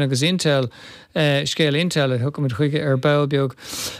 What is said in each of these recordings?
agus Intel, scéal Intel a thiocfaimid chuige ar ball beag.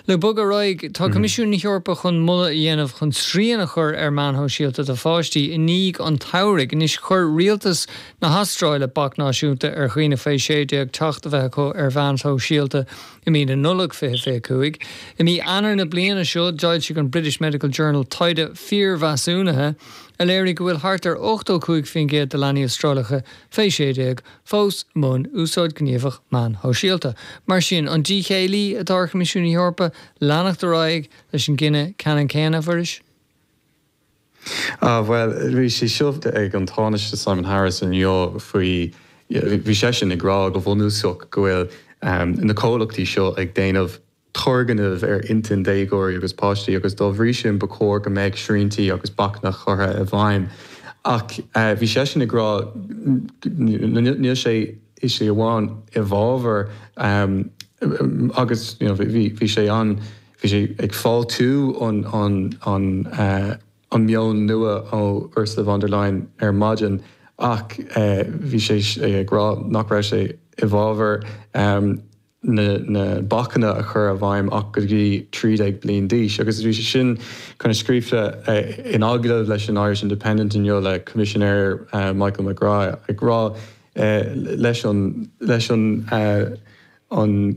Le bogadh ar aghaidh, tá Coimisiún na hEorpa chun moladh a dhéanamh chun srian a chur ar mheáin shóisialta do pháistí i ndiaidh an tsamhraidh. Anois, chuir rialtas na hAstráile bac náisiúnta ar dhaoine faoi 16 teacht a bheith acu ar mheáin shóisialta i mí na Nollag 2025. I mí Eanáir na bliana seo, d'fhoilsigh an British Medical Journal taighde phiarmheasúnaithe a léirigh go bhfuil thart ar 85% de leanaí Astrálacha faoi 16 fós i mbun úsáid ghníomhach meán shóisialta. Mar sin, an díchéille atá ar Choimisiún na hEorpa leanacht ar aghaidh leis an gcinneadh ceannann céanna, a Mhuiris? Ah, bhuel, bhí sé seo ag an Tánaiste Simon Harris inniu faoi, bhí seisean ag rá go bhunúsach go bhfuil na comhlachtaí seo ag déanamh, turgnaimh ar intinn déagóirí agus páistí agus dá bhrí sin ba chóir go mbeadh sriantí agus bacanna curtha i bhfeidhm. Ach bhí seisean ag rá níl sé sé amháin i bhfabhar agus you know bhí sé an bhí sé ag fáiltiú an an an an meon nua ó Ursula von der Leyen ar maidin ach bhí sé ag rá nach raibh sé i bhfabhar. na bacanna a chur i bhfeidhm ach go dtí 13 bliain d'aois. Agus bhí sé sin scríofa in agallamh leis an Irish Independent inniu le Coimisinéir Michael McGrath ag rá leis an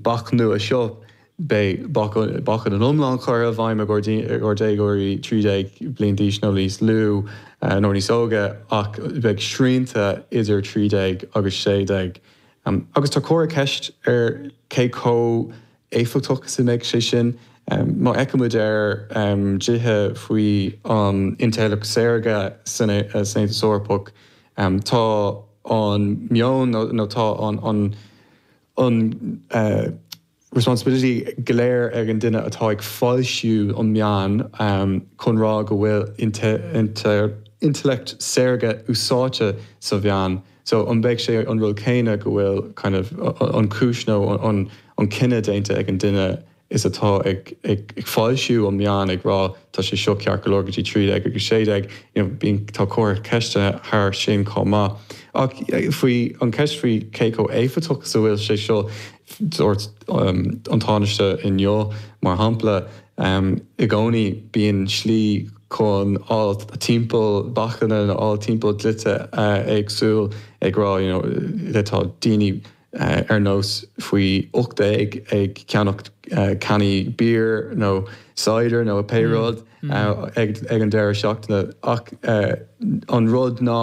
bac nua seo beidh bacanna an iomlán curtha i bhfeidhm i gcomhair déagóirí 13 bliain d'aois nó níos lú nó níos óige ach beidh srianta idir 13 agus 16. Um agus tá comhartha ceist ar cé chomh éifeachtach is a mbeidh sé sin. Má fheicimid ar dlíthe faoi an intleacht saorga san Aontas Eorpach, tá an meon nó tá an responsibility go léir ag an duine atá ag foilsiú an meáin chun rá go bhfuil intellect saorga úsáidte sa mheáin so an mbeidh sé an rud céanna go bhfuil kind of an chúis nó an cinneadh déanta ag an duine is atá ag foilsiú an meáin ag rá tá sé seo ceart go leor go dtí 13 agus 16 you know bíonn tá comhartha ceiste thar sin chomh maith ach faoi an ceist faoi cé chomh éifeachtach is a bhfuil sé seo Dúirt an Tánaiste inniu, mar shampla, I gcónaí bíonn slí chun fháil timpeall, bacanna nó fháil timpeall dlíthe éagsúil ag rá you know tá daoine ar nós faoi ocht déag ag ceannacht cannaí beer nó cider nó pé rud. ag an deireadh seachtaine ach an rud ná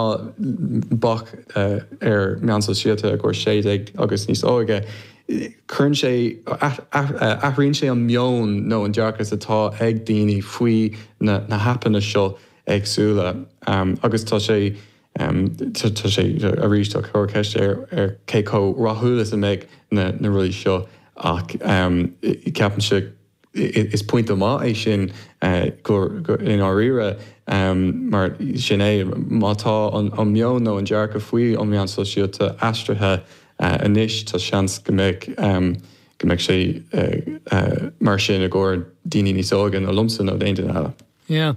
bac ar mheán sóisialta i gcomhair 16 agus níos óige, cuireann sé, athraíonn sé an meon nó an dearcadh atá ag daoine faoi na haipeanna seo éagsúla agus tá sé, tá sé, arís, ag cur ceist ar cé chomh rathúil is a bheidh na rudaí seo ach ceapaimse, Is pointe maith é sin i ndáiríre, mar sin é, má tá an meon nó an dearcadh faoi an meán sóisialta athraithe anois, tá seans go mbeidh go mbeidh sé mar sin i gcomhair daoine níos óige ná liomsa nó d'aon duine eile. Yeah.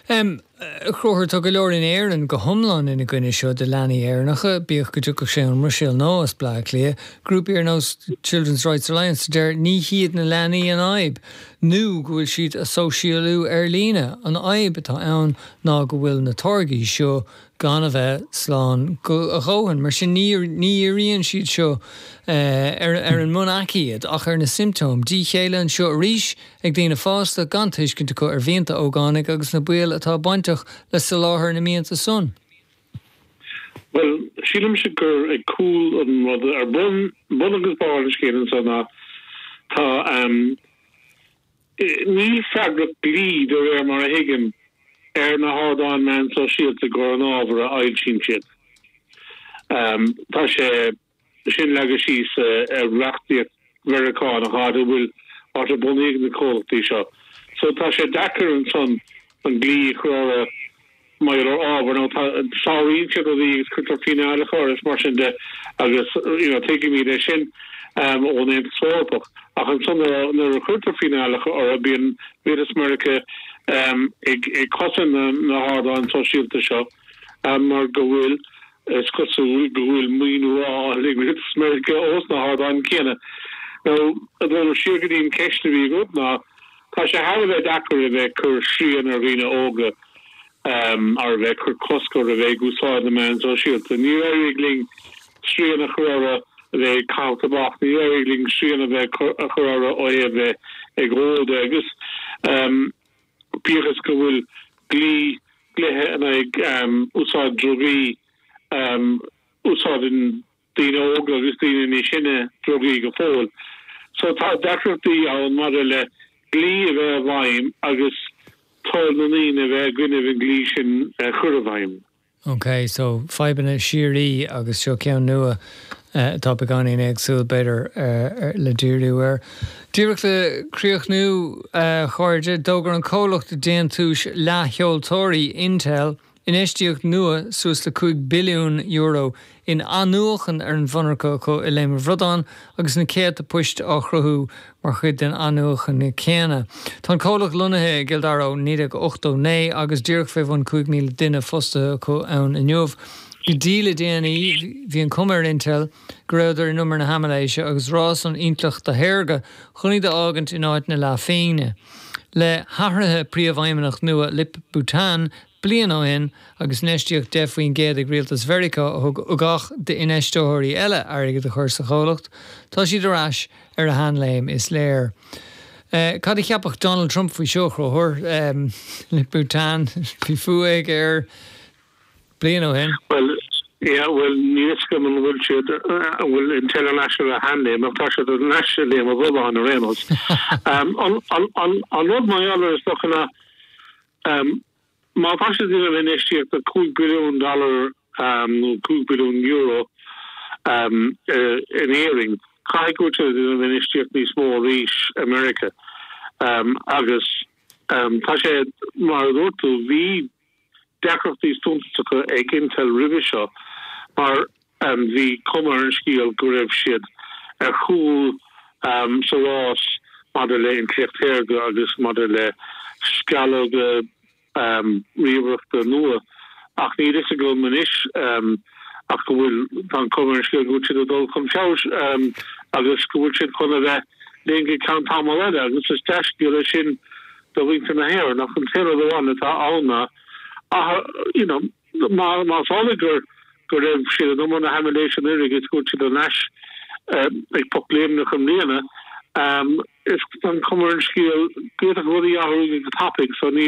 Um, a Chrothúir, tá go leor in Éirinn go hiomlán ina gcoinne seo de leanaí Éireannacha, bíodh go dtiocfadh sé ón mBruiséil nó as Baile Átha Cliath. Grúpa ar nós Children's Rights Alliance, a deir ní hiad na leanaí an fhadhb, nó go bhfuil siad ag sóisialú ar líne. An fhadhb atá ann ná go bhfuil na táirgí seo gan a bheith slán a ndóthain. Mar sin, ní dhíríonn siad seo ar an mbunaicíd ach ar na siomptóim, díth céille anseo arís ag daoine fásta, gan tuiscint acu ar mhianta ógánaigh agus na baoil atá bainteach le soláthar na mianta san. Bhuel, sílimse gur ag cúl an ruda, ar bun, bun agus barr an scéil anso ná tá. Níl freagracht dlí, de réir mar a thuigim, ar na hardáin meán sóisialta i gcomhair an ábhair a fhoilsíonn siad. Tá sé sin leagtha síos i reachtaíocht Mheiriceánach, áit a bhfuil, áit a bunaíodh na comhlachtaí seo. So tá sé deacair ansan an dlí a threorú. maidir le ábhar, you know, sáraíonn siad rudaí agus cuirtear fíneálacha orthu is mar sin de agus, you know, tuigimid é sin ón Aontas Eorpach ach ansan nuair a chuirtear fíneálacha orthu bíonn Rialtas Meiricea ag cosaint na hardáin sóisialta seo mar go bhfuil is cosúil go bhfuil maoiniú á fháil ag Rialtas Meiricea ós na hardáin céanna. Now, ag dul siar go dtí an ceist a bhí agat ná Tá sé thar a bheith deacair a bheith ag cur srian ar dhaoine óga, a bheith ag cur cosc orthu a bheith ag úsáid na meán sóisialta. Níor éirigh linn srian a chur orthu a bheith ag caitheamh tobac, níor éirigh linn srian a bheith a chur orthu ó thaobh bheith ag ól de agus bíodh is go bhfuil dlí, dlíthe in aghaidh úsáid drugaí, úsáideann. daoine óga agus daoine níos sine drugaí go fóill. So tá deacrachtaí ann maidir le dlí a bheith i bhfeidhm agus toil na ndaoine a bheith i gcoinne an dlí sin a chur i bhfeidhm. OK, so fadhbanna síoraí agus seo ceann nua atá beagáinín éagsúil, b'fhéidir, le díriú air. Díreach le críochnú, a chairde, d'fhógair an comhlacht déantúis leathsheoltóirí Intel, Infheistíocht nua suas le €5 billiún in athnuachan ar an mhonarcha acu i Léim an Bhradáin agus na céadta poist á chruthú mar chuid den athnuachan céanna. Tá an comhlacht lonnaithe i gCill Dara ó 1989 agus díreach fé bhun 5,000 duine fostaithe acu ann inniu. Go dtí le déanaí, bhí an cuma ar Intel, go rabhadar in umar na haimléise agus rás na hintleachta saorga chun iad a fhágaint in áit na leathphingne. Le hathruithe príomhfheidhmeannach nua Lip-Bu Tan bliain ó shin agus infheistíocht 10 faoin gcéad ag rialtas Mheiriceá a thug uchtach d'infheisteoirí eile airgead a chur sa chomhlacht, tá siad ar ais ar a seanléim, is léir. Cad a cheapfadh Donald Trump faoi seo a Chonchúir Lip-Bu Tan? Bhí fuath aige air. bliain ó shin. Bhuel, yeah, bhuel, níl a fhios agam an bhfuil siad, an bhfuil Intel ar ais ar a sheanléim, ach tá siad ar ais ag léim ar mhodh amháin ar aon nós. An rud mar gheall air is dócha ná, má tá siad ag déanamh infheistíocht de cúig billiún dollar nó cúig billiún euro in Éirinn, caithfidh go bhfuil siad ag déanamh infheistíocht níos mó arís i Meiriceá. Agus tá sé, mar a dúirt tú, bhí deacrachtaí suntasacha ag Intel roimhe seo mar bhí cuma ar an scéal go raibh siad ar chúl sa rás maidir le Intleacht Shaorga agus maidir le sceallóga ríomhaireachta nua. Ach níl a fhios agam anois ach go bhfuil tá an cuma ar an scéal go bhfuil siad ag dul chun feabhais agus go bhfuil siad chun a bheith linn go ceann tamall eile agus is dea-scéal é sin do mhuintir na hÉireann ach an t-aon rud amháin atá ann ná you know mar más amhlaidh go raibh siad in umar na haimléise anuraidh is go bhfuil siad ar ais ag pocléimneach i mbliana sin an chuma ar an scéal go bhféadfadh rudaí athrú go han-tapaidh so ní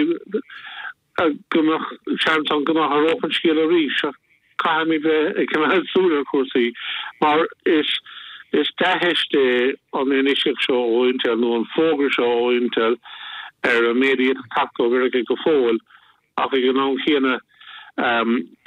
go mbeadh sé seans ann go n-athródh an scéal arís ach caithfimid bheith ag coimeád súil ar chúrsaí mar is dea-thástáil é an infheistíocht seo ó Intel nó an fógra seo ó Intel ar an méid a d'fhéadfadh teacht ó Mheiriceá go fóill ach ag an am céanna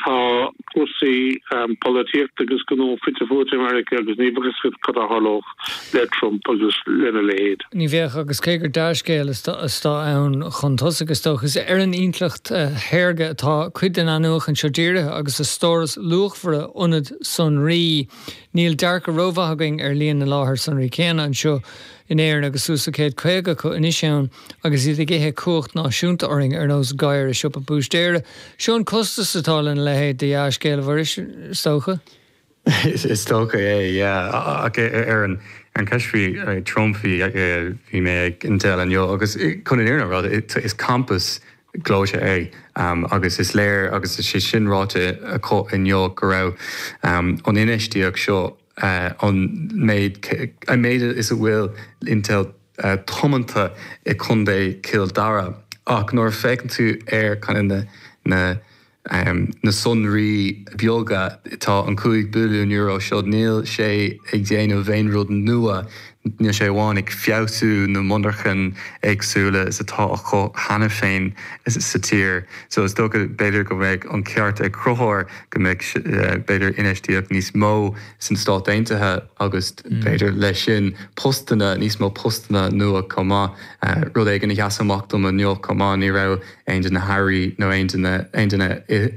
Tá cúrsaí polaitíochta agus gnó fite fuaite i Meiriceá agus ní bheadh fhios agat cad a tharlódh le Trump agus lena leithéid. Ní bheadh, agus cé gur dea-scéal atá ann chun tosaigh, is dócha, is ar an intleacht shaorga atá cuid den athnuachan seo dírithe agus ar stóras luachmhara ionad sonraí. Níl dearcadh rómhaith againn ar líon na láthair sonraí céanna anseo in Éirinn agus suas le céad caoga acu anois ann. Agus iad ag ithe cumhacht náisiúnta orainn ar nós gadhair i siopa búistéara, seo an costas atá lena leithéid de dhea-scéal, a Mhuiris, is dócha? Is dócha é, yeah. Ach ar an cheist faoi Trump, bhí mé ag Intel inniu agus chun an fhírinne a rá duit, is campas gleoite é agus is léir agus é sin ráite acu inniu go raibh an infheistíocht seo, an méid an méid is a bhfuil Intel tiomanta i Contae Chill Dara. Ach nuair a féachann tú ar na sonraí beaga, tá an €5 billiún seo, níl sé ag déanamh aon rud nua Níl sé amháin ag feabhsú na monarchan éagsúla atá acu cheana féin sa tír so is dócha b'fhéidir go mbeidh an ceart ag Crothúr go mbeidh b'fhéidir infheistíocht níos mó sna Stáit Aontaithe agus b'fhéidir leis sin postanna, níos mó postanna nua chomh maith. Rud éigin a sheas amach dom inniu chomh maith, ní raibh aon de na hairí nó aon de na aon duine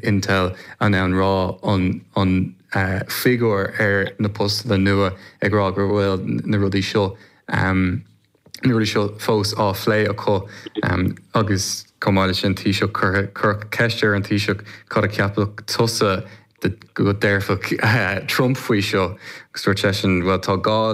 Intel in ann rá an figiúr ar na postanna nua ag rá go bhfuil na rudaí seo na rudaí seo fós á phlé acu. Agus chomh maith leis sin, an Taoiseach, cuireadh ceist ar an Taoiseach cad a cheapfadh tusa go déarfadh Trump faoi seo agus dúirt seisean bhuel tá gá